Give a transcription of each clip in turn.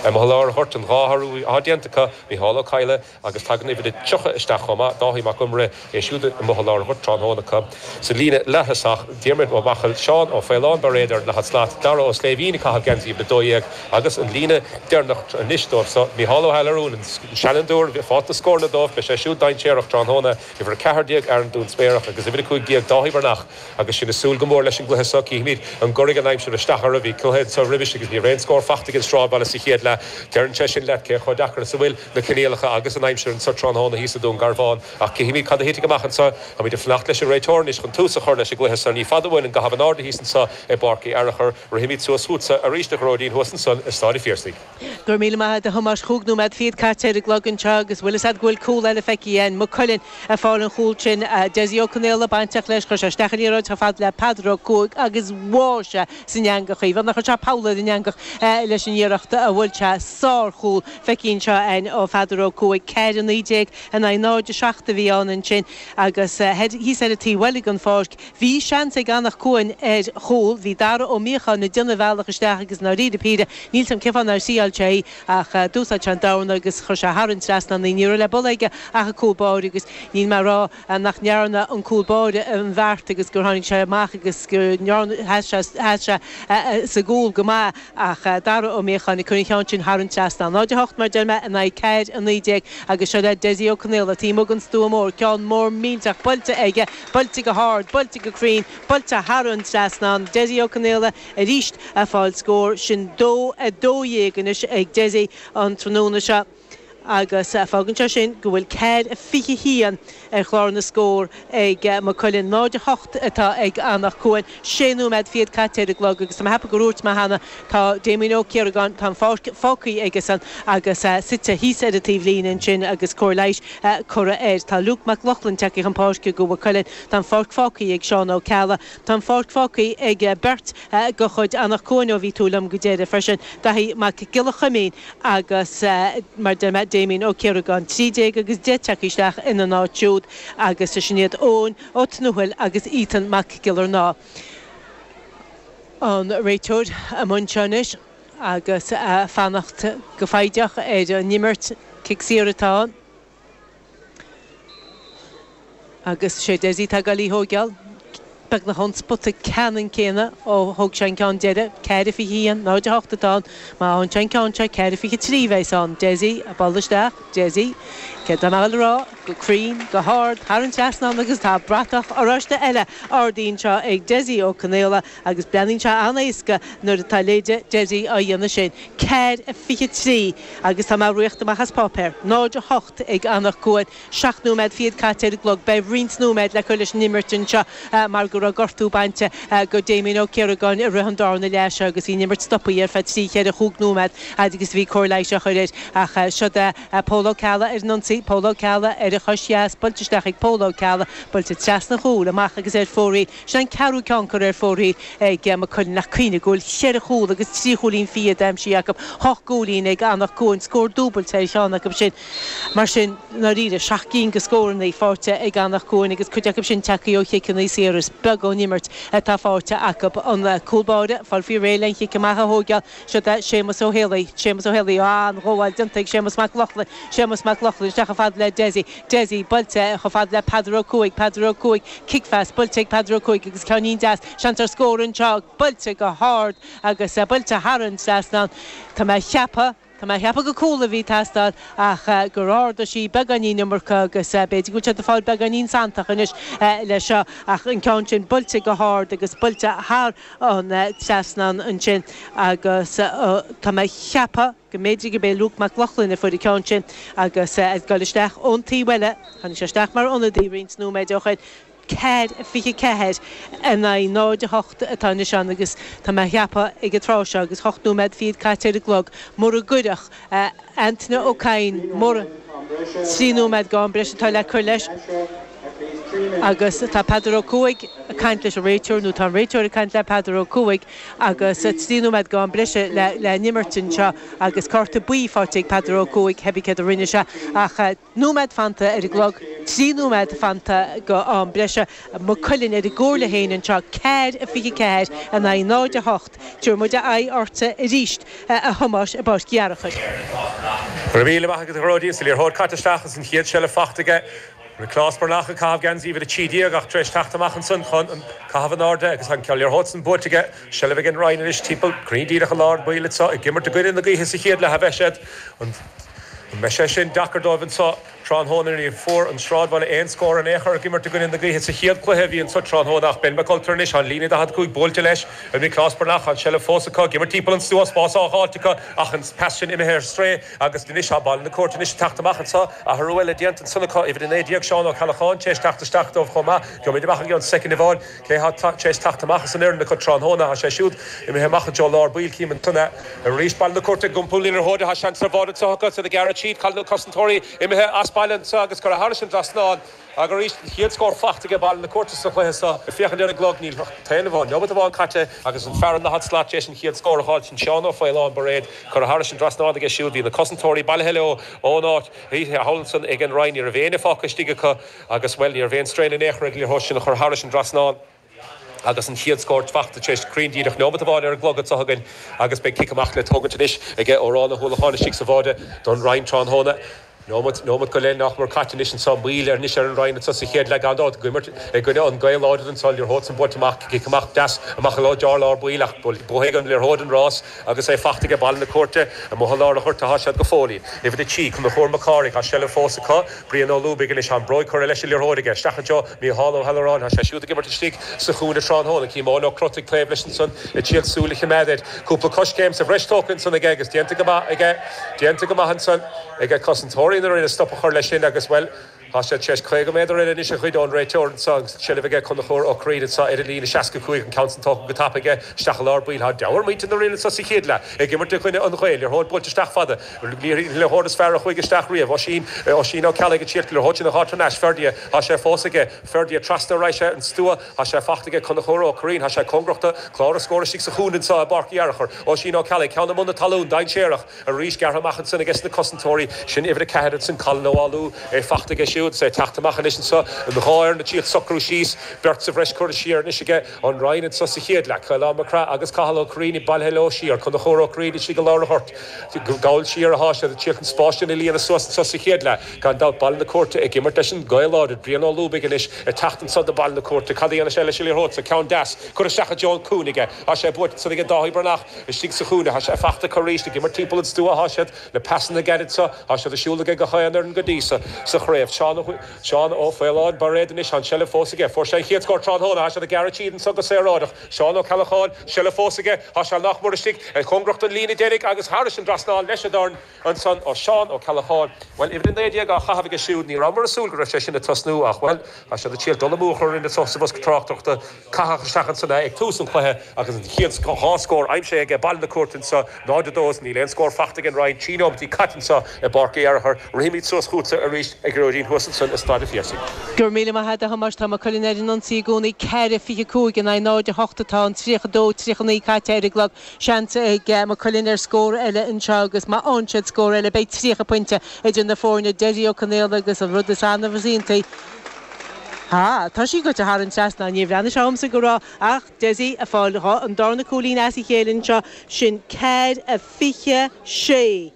Amuigh i lár an ghoirt an dhá athrú atá déanta acu, Micheál Ó Cadhla agus tagann uimhir a 30 isteach chomh maith, Dáithí Mac Iomaire, é siúd amuigh i lár an ghoirt tráthnóna acu. Sa líne leaththosach, Diarmaid Ó Machail, Seán Ó Faoláin Bairéad ar an daichead slat, Dara Ó Sléibhín ag caitheamh geansaí uimhir 12 agus an líne deireanach anois dóibh so, Micheál Ó hEalarúin, an seanfhondúir a bhí ag fáil na scóranna dóibh, beidh sé siúd dainséarach tráthnóna, uimhir 14 Aaron Dúinsméarach agus uimhir 15 Dáithí Breathnach. Agus sinn ag súil go mór leis an gcluiche so, cífimíd an gcuirfidh an aimsir isteach orthu. Bhí cluiche anso roimis agus ní raibh aon scór fachta ag an Stráidbhaile sa chéad leath. Deireann sé sin leat cé chomh deacair is a bhfuil na coinníollacha agus an aimsir anso tráthnóna thíos i Dún Garbhán. Ach cífimíd cad a thitfidh amach anso. Táimíd ag fanacht leis an réiteoir anois chun tús a chur leis an gcluiche so. Ní fada uainn an gcaitheamh in airde thíos anso i bPáirc Uí Fhearachair. Rithimíd suas chútsa arís a Ghearóidín thuas ansan i Stáid a' Phiarsaigh. Go raibh míle maith a'd a Thomáis, chúig nóiméad fichead caite ar an gclog anseo agus 'bhfuil 'fhios a'd go bhfuil cúl eile feicthe aghainn. Maigh Cuilinn ag fáil an chúl sin. Dessie Ó Conaola bainteach leis, chuir sé isteach an liathróid chomh fada le Peadar Ó Cuaig agus bháigh sé san eangach í. Beag nár chuir sé poll ar an eangach leis an iarracht a bhuail sé. Sár-chúl feicthe anseo aghainn ó Pheadar Ó Cuaig. Ceathair a naoi déag in aghaidh 0 a seacht a bhí ann ansin agus thíos ar an taobh eile den pháirc, Bhí seans ag Anach Cuain ar chúl. Bhí Dara Ó Míocháin ag déanamh a bhealach isteach agus i ndáiríre píre níl 'fhios a'm cén fáth nár thriáil sé í ach d'úsáid sé an dorna agus chuir sé thar an trasnán í. Ní raibh le buladh aige ach an cúl báire agus níl mé ag rá nach ndearna an cúl báire an bheart agus gur tháinig sé amach agus gur sheas sé sa gcúl go maith ach Dara Ó Míocháin ag cur an cheann sin thar an trasnán. 0, 8 mar deir mé in aghaidh 4, 19 agus seo le Dessie Ó Conaola. Taobh amuigh den stua mór ceann mór millteach buailte aige Buailte go hard, buailte go cruinn, buailte thar an trasnán. Dessie Ó Conaola arís ag fáil scór. Sin dó 12 anois ag Dessie an tráthnóna seo agus fágann sé sin go bhfuil ceathair a fiche 'haon ar chlár na scór ag Maigh Cuilinn. 0 a hocht atá ag Anach Cuain. sé nóiméad fichead caite ar an gclog agus tá mé ceapadh gur úirt mé cheana tá Damien Ó Ciaragáin tá an pháirc fágthaí aige-san agus suite thíos ar an taobh líne ansin agus cóir leighis curtha air. Tá Luke Mac Lochlainn tagtha chun páirce do Mhaigh Cuilinn. Tá an pháirc fágthaí ag Seán Ó Ceallaigh. Tá an pháirc fágthaí ag beirt de chuid Anach Cuain ó bhí tú liom go deireadh freisin, Dáithí Mac Giolla Chuimín agus mar deir mé Damien Ó Ciaragáin. Trí déag agus deich tagtha isteach ina n-áit siúd agus sin iad Eoin. Ó Tuathail agus Ethan Mac Giollarnáth an réiteoir i mbun seo anois agus fanacht go foighdeach ar an imirt. Cic saor atá ann agus sé Dessie atá ag dul í thóigeál. Beagnach ón spota ceannann céanna ó thóg sé an ceann deireadh. Ceathair a fiche a haon, 0 a hocht atá ann. Má fhaigheann sé an ceann seo ceathair a fiche trí a bheas ann. Dessie, a ball isteach. Deaide, Cé tá mé a rá? go cruinn, go hard, thar an trasnán agus tá bratach oráiste eile ardaíonn sé ag Deaide Ó Conaola agus breathnaíonn sé an-éasca nuair atá Léide Deaide á dhéanamh sin. Ceathair a fiche trí agus tá mé ag rith amach as páipéar. Náid a hocht ag Anach Cuain. Seacht nóiméad fichead caite ar an gclog. Beidh roinnt nóiméad le cur leis an imirt anseo. mar go raibh gortú bainte do Damien Ó Ciaragáin i rith an dárna leath seo agus bhí an imirt stopaithe ar feadh trí cheithre chúig nóiméad fhad agus a bhí cóir leighis á chur air. Ach siod é Pól Ó Ceallaigh ar an ionsaí, Pól Ó Ceallaigh ar a chois dheas, buailte isteach ag Pól Ó Ceallaigh, buailte trasna chúl, amach agus ar fóraoil. Sin an ceathrú ceann curtha ar fóraoil ag Mac Cuilinn ach cuimhnigh go bhfuil cheithre chúl agus trí chúilín fiche aimsithe acu, hocht gcúilín ag Anach Cuain, scór dúbailte ar cheann acu sin. Mar sin, ndáiríre, seacht gcinn de scóranna fáite ag Anach Cuain agus cuid acu sin tagtha ó chiceanna saora. Is beag ón imirt atá faighte acu. An cúl báire ag fáil faoi réir lena chic amach a thógáil, siod é Séamus Ó hÉalaí. Séamus Ó hÉalaí, á, an ghabháil déanta ag Séamus Mac Lochlainn. Séamus Mac Lochlainn isteach chomh fada le Dessie. Dessie, buailte chomh fada le Peadar Ó Cuaig. Peadar Ó Cuaig, cic deas, buailte ag Peadar Ó Cuaig agus ceannín deas. Seans ar scór anseo, buailte go hard agus buailte thar an trasnán. Tá mé ag ceapadh. Tá mé ag ceapadh gur cúl a bhí ag teastáil ach gur ardaigh sí beagáinín iomarca agus b'fhéidir go bhfuil sé ag fáil beagáinín santach anois le seo ach an ceann sin buailte go hard agus buailte thar an trasnán ansin agus tá mé ag ceapadh go mb'fhéidir gurb é Luke Mac Lochlainn a fuair an ceann sin agus ag gabháil isteach ón taobh eile, tháinig sé isteach mar ionadaí roinnt nóiméad ó shoin. 4, 24, in aghaidh 0, 8 atá anois ann agus tá mé ag ceapadh ag an tráth seo agus 8 nóiméad fichead caite ar an gclog, mura gcuirfeadh Antaine Ó Cadhain, muise, 3 nóiméad d'am breise atá le cur leis agus tá Peadar Ó Cuaig ag caint leis an réiteoir, nó tá an réiteoir ag caint le Peadar Ó Cuaig agus 3 nóiméad d'am breise le n-imirt anseo agus cárta buí faighte ag Peadar Ó Cuaig, cibé céard a rinne sé ach. nóiméad fanta ar an gclog, trí nóiméad fanta d'am breise, Maigh Cuilinn ar a gcomhairle féin anseo, ceathair a 24 in aghaidh 0, 8. Tabharfaidh muid aghaidh ortsa arís, a Thomáis, i bPáirc Fhearchair. Go raibh míle maith agat a Ghearóidín, is an liathróid caite isteach agus an chéad seilbh faighte ag Nioclás Breathnach ag caitheamh geansaí uimhir a trí déag ach tar éis teacht amach ansan chun an caitheamh in airde agus an liathróid san buailte aige, seilbh ag An Rinn anois timpeall cruinn díreach i lár an bhaill anso ag imirt i gcoinne na gaoithe sa chéad leath a bheas siad. Beidh sé sin deacair dóibh anso tráthnóna. Ní bhfuair an Sráidbhaile aon scór in aon chor ag imirt i gcoinne na gaoithe sa chéad cluiche a bhí anso tráthnóna ach Ben McCulter anois ar an líne 45 buailte leis ar Nioclás Breathnach an seilbh fós acu ag imirt timpeall ansan, spás á dh'fháilt acu ach an pas sin imithe ar strae agus anois tá Baile na Cúirte anois ag teacht amach anso. Athrú eile déanta ansan acu uimhir 19 Seán Ó Ceallacháin tar éis teacht isteach dóibh chomh maith. Gheobhaimid amach i gceann soicind amháin. Cé thá tar éis teacht amach as an fhoireann acu tráthnóna? Thá sé siúd imithe amach i dtreo lár baill, cím an t-ionadh. Arís Baile na Cúirte ag iompar na liathróide, seans ar bháide anso acu is iad ag gearradh tríd. Cá bhfuil na cosantóirí imithe as baile anseo agus curtha thairis an dtrasnán acu arís. An chéad scór fachta aige Baile na Cúirte sa chluiche so. Ag féachaint ar an gclog níl fiú amháin nóiméad amháin caite agus an fear i ndaichead slat t'éis an chéad scór a fháiltint, Seán Ó Faoláin, Bairéad, curtha thairis an dtrasnán aige siúd. Bhí na cosantóirí bailithe leo ón áit. Thall ansan ag an Rinn ní raibh éinne fágtha istigh acu. Agus, bhuel, ní raibh aon strain in aon chor ar an liathróid sin a chur thairis an dtrasnán agus an chéad scór fachta t'éis cruinn díreach neomat amháin ar an gclog anso againn agus beidh cic amach le tógaint anois ag Odhrán Ó hUallacháin istigh sa bháide don Rinn tráthnóna. Neomat, neomat go leith nách mor caite anois anso, moill ar anois ar an Rinn anso sa chéad leath gan dabht, ag imirt i gcoinne an ghaoth láidir anso, liathróid san buailte amach, cic amach deas amach i lár lár baill ach buafaidh an liathróid an rás. Agus é fachta aige Baile na Cúirte, amuigh i lár a' ghoirt athá siad go fóillín. Uimhir a trí, Conchúr Mac Cárthaigh, tá seilbh fós acu, Brian Ó Lúbaigh anois ann, bróig curtha leis an liathróid aige isteach annseo, Mícheál Ó hAlluráin, tá sé siúd ag imirt istigh sa chúinne tráthnóna, Éamonn Ó Crotaigh taobh leis annsan ag triail súil a chimeád air. Cúpla coiscéim sa bhreis tógtha annsan aige agus déanta go maith aige, déanta go maith annsan aige cosantóirí na Rinne stop a chur leis sin agus, bhuel, Tá siad t'éis caoga méadar eile anois a ghoid ó'n réiteoir annso agus an tseilbh aige Conchubhar Ó Cuirrín annso ar an líne seasca cúig, an ceann san tógtha go tapa aige isteach i lár baill. Thá deabhadh ar mhuintir na Rinne annso sa chéad leath ag imirt i gcoinne an ghaoth, liathróid buailte isteach fada. Liathróid is fearr a chuaidh isteach riamh. Oisín, Oisín Ó Ceallaigh ag triail an liathróid sin a dh'fháil thar n-ais. Ferdia, Thá sé fós aige. Ferdia, Trasna arís ar an stua. Thá sé fachta aige Conchubhar Ó Cuirrín. Thá sé cóngarach do chlár na scór istigh sa chúinne annso i bPáirc Uí Fhearachair. Oisín Ó Ceallaigh, ceann i mbun na talún, dainséarach. Arís gearrtha amach ansan ages na cosantóirí, sin uimhir a ceathair ansan, Colin Ó Foghlú, é fachta aige siúd is é ag teacht amach anois anso, an dhá fhoireann ag triail socrú síos, beirt sa bhreis curtha siar anois aige, an Rinn anso sa chéad leath, Caolán Mac Craith agus Cathal Ó Cuirrín bailithe leo siar, Conchúr Ó Cuirrín istigh i lár an ghoirt, gabhail siar athá siad ag triail an spás sin a líonadh suas anso sa chéad leath, gan dabht Baile na Cúirte ag imirt leis an ngaoth láidir, Brian Ó Lúbaigh anois ag teacht anso do Baile na Cúirte, cad a dhéanfas sé leis an liathróid so, ceann deas curtha isteach i dtreo an chúinne aige, thá sé buailte ansan aige Dáithí Breathnach, Istigh sa chúinne thá sé fachta acu aríst, ag imirt tímpeall an stua thá siad, na peasanna gairid seo, thá siad ar siúl aige gach aon fhoireann go dtí so sa chraobh. Seán Ó, Seán Ó Faoláin, Bairéad anois, thá an seilbh fós aige, fuair sé an chéad scór tráthnóna, thá siad a' gearradh tríd anso go saoráideach. Seán Ó Ceallacháin, seilbh fós aige, thá sé nach mór istigh, cóngarach don líne deiridh agus thairis an drasnán leis a' dorn, Ansan ó Seán Ó Ceallacháin, Bhuel, uimhir a naoi déag á chaitheamh aige siúd, ní rabhmar ag súil go raibh sé sin ag tosnú ach, bhuel, tá siad ag triail dul amú a chur orainn anso sa bhosca tráchtaireachta. Caitheadh isteach ansan é ag tús an chluiche agus an chéad dhá scór aimsithe aige, Baile na Cúirte anso 0-2 is níl aon scór fachta ag an Rinn, trí nóimeataí caite anso i bPáirc Uí Fhearchair. Rithimíd suas chútsa arís a Ghearóidín thuas ansin i Staid an Phiarsaigh. Go raibh míle maith a'd a Thomáis, tá Maigh Cuilinn ar an ionsaí i gcónaí. Ceithre, fiche cúig in aghaidh 0-8 atá ann, tríocha dó, tríocha naoi caite ar an gclog. Seans ag Maigh Cuilinn ar scór eile anseo agus má fhághann siad scór eile beidh 30 poinnte idir na foirne. Dessie Ó Conaola agus an rud is annamh is iontaí, ha, tá sí goite thar an trasnán, níor bhreathnaigh sé dhomsa go raibh ach Dessie ag fáil an darna cúilín as a chéile anseo, sin ceathair a fiche sé!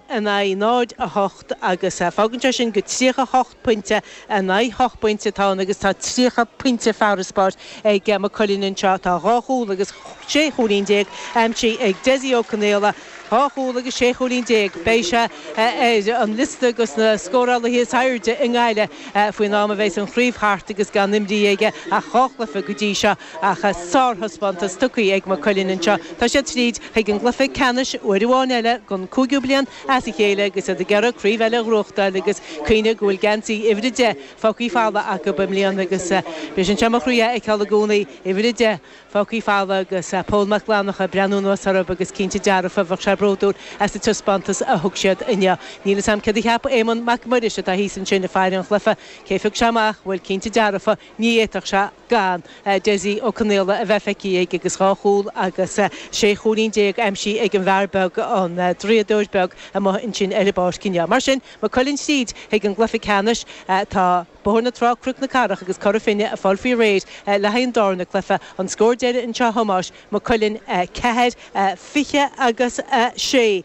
in aghaidh 0-8 agus fágann sé sin gur 38 pointe in aghaidh 8 bpointe atá ann agus tá 30 pointe farasbarr ag Maigh Cuilinn anseo. Tá dhá chúl agus sé chúilín déag aimsithe ag Dessie Ó Conaola, dhá chúl agus sé chúilín déag. Beidh sé ar an liosta dos na scórálaithe is airde i nGaillimh faoin am a bheas an chraobh thart agus gan imrithe aige ach dhá chluiche go dtí seo. Ach sárthaispeántas tugtha ag Maigh Cuilinn anseo. Tá siad tríd chuig an gcluiche ceannais uair amháin eile don cúigiú bliain as a chéile agus iad ag iarraidh craobh eile a ghnóthachtáil agus cuimhnigh go bhfuil geansaí uimhir a deich fágtha folamh acu i mbliana agus bíonn sé anseo mo chroí a fheiceáil i gcónaí uimhir a deich fágtha folamh agus Pól Mac Fhlannacha ag breathnú anuas orthu agus cinnte dearfa bheadh sé bródúil as an taispeántas a thug siad inniu. Níl 'fhios a'm céard a cheap Éamonn Mac Muiris atá thíos ansin ag faire an chluiche cé phioc sé amach bhuel cinnte dearfa Ní fhéadfadh sé gan Dessie Ó Conaola a bheith feicthe aige agus dhá chúl agus sé chúilín déag aimsithe ag an bhfear beag, an draíodóir beag amuigh ansin ar an bpáirc inniu. Mar sin, Maigh Cuilinn tríd chuig an gcluiche ceannais. Tá Bóthar na Trá, Cnoc na Cathrach agus Cora Finne ag fáil faoi réir le haghaidh an darna cluiche. An scór deiridh anseo a Thomáis, Maigh Cuilinn 4, 20 agus 6,